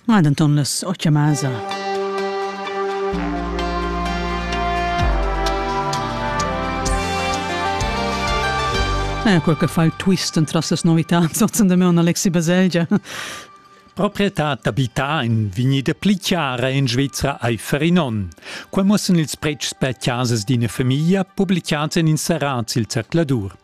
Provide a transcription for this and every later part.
Ma denton las ocha masa. Eh, quel che fa il twist entras las novità, sotzen de me on Alexi Baselgia. Proprietà d'abità in vignida pli chiara in Svizzera ai Ferinon. Qua mussen ils pretschs per casas d'ina famiglia publicats en inserats il zercladur.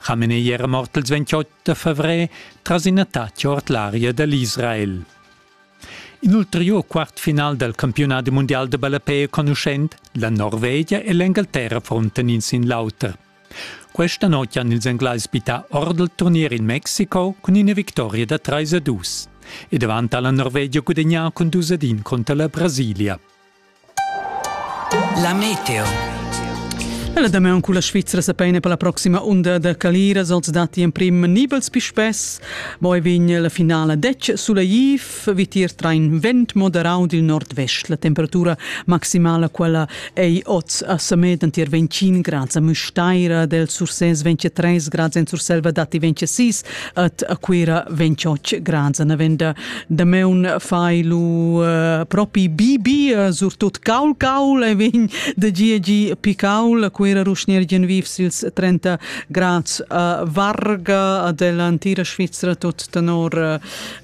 Chamenei era mort il 28 favrer tras in attacc ord l'aria dall'Israel. In ulteriur quartfinal dal campiunat mundial de ballapei conuschent, la Norvegia e l'Engalterra fronten in sin l'auter. Questa notte hanno ils englais bittà ord il turnier in Mexiko con una vittoria da 3 a 2 e davanti alla Norvegia gudagnà con 2 a 1 contro la Brasilia. La meteo. La damaun culla Svizra sa peina per la proxima unda da Caliras els datti emprim nibels pispes. Moi vegn la finala dec suleiv, vitir train vent moderau dil nord-vest. La temperatura maximala quella ei oz a Samed antier 25 grads a Mustaira, del Sursès 23 grads en Surselva datti 26 At a Cuira ven chotsch granza navenda. Dameun fai lu uh, propi bibi, uh, surtut caul caul e vegn da gia gi picaul. A Cuira ruschner gen viv sils 30 grads a Varga, a della antira Svizzera, tot tenor uh,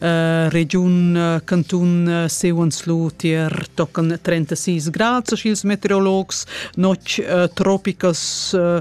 uh, regiun, uh, cantun uh, Sewenslu tier tocan 36 grads, schils meteorologs, notg uh, tropicas uh,